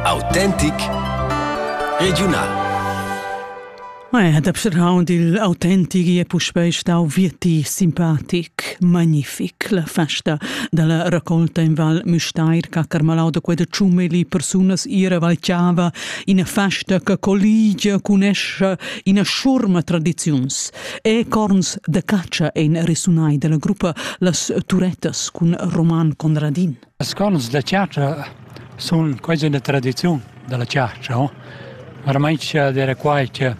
Autentic regiunal. Dab surround il autentic è puspei stau vieti simpatic, magnific la festa dalla raccolta in Val Müstair ca Carmalau da quella ciume li persunas ira valciava ina festa che colligia cun escha ina schurma tradiziuns e corns da caccia ein resunai dalla gruppa Las Turettas cun Roman Conradin. Las scolas da chatscha sun quasi üna tradiziun da la chatscha, ho? Varmaint d'eira quai che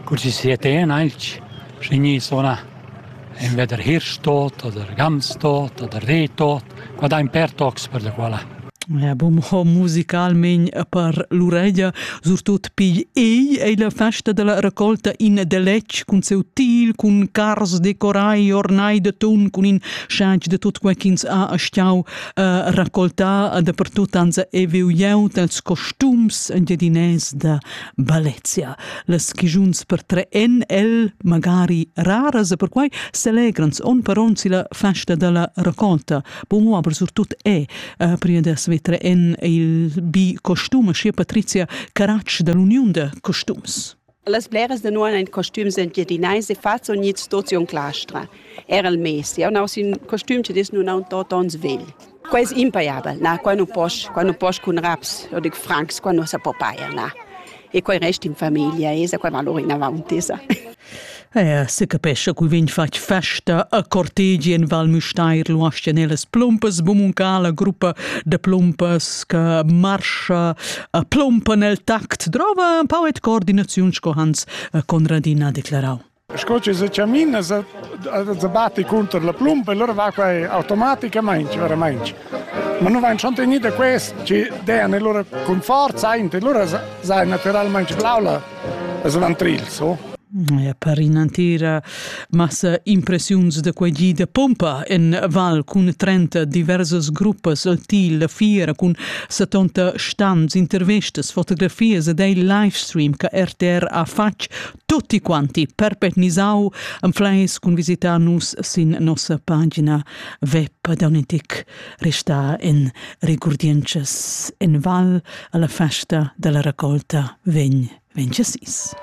cur chi sia ten aint schi gni sunà invè der Hirschtodt oder Gamstodt oder Rehtodt, qua dain per tocs per la quala. E bun, ho musicalmaing per l'ureglia surtot pigl ei ei la festa della raccolta in deletg cun seu til, cun cars decorai ornai d'atun, cun in Scheig de tut quei ch'ins ha astgau uh, raccoltar dapertut ans e viu jeu dels costums engiadinès da Valencia. Les chigiuns per tre en el magari raras e per quei selegrans on per on si la festa della raccolta. Bon, aber surtut è uh, prima de svetre en il bi costum, scia Patrizia Caratsch dall'uniun de costums. Las bleras da nua ein costums engiadinais e fats unids tuts in clastra. Era il mes, jeu naus in costum che dis nun aun tot ons vegl. Quei è impaiabel, na, quai non posch, quai non posch cun raps, io dic francs, quai non se po pair, na. E quai resta in famiglia, esa quai va loro in avanti, sa. Er secapescha cui vegn fatg festa a cortegi en Val Müstair lu astianelas plumpas bumuncala gruppa de plumpas che marscha a plumpa nel tact drova un pau et coordinaziun sco Hans Conradina declarau. Sco ci se camina se batti contro la plumpa e loro va qua automaticamente veramente ma non vanno niente questo ci danno loro con forza e loro sai naturalmente blaula Es un antril, so? Ja, per in'entira massa impressiuns da quei gi de pompa en Val cun 30 diversas gruppas til fiera cun 70 stans, intervistas, fotografias ed ei livestream che RTR ha fatg tutti quanti perpetnisau en fleis cun visitar nus sin nossa pagina web da restà en regurdientschas en val alla festa della raccolta vegn vencesis.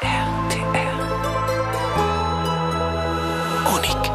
RTR Unic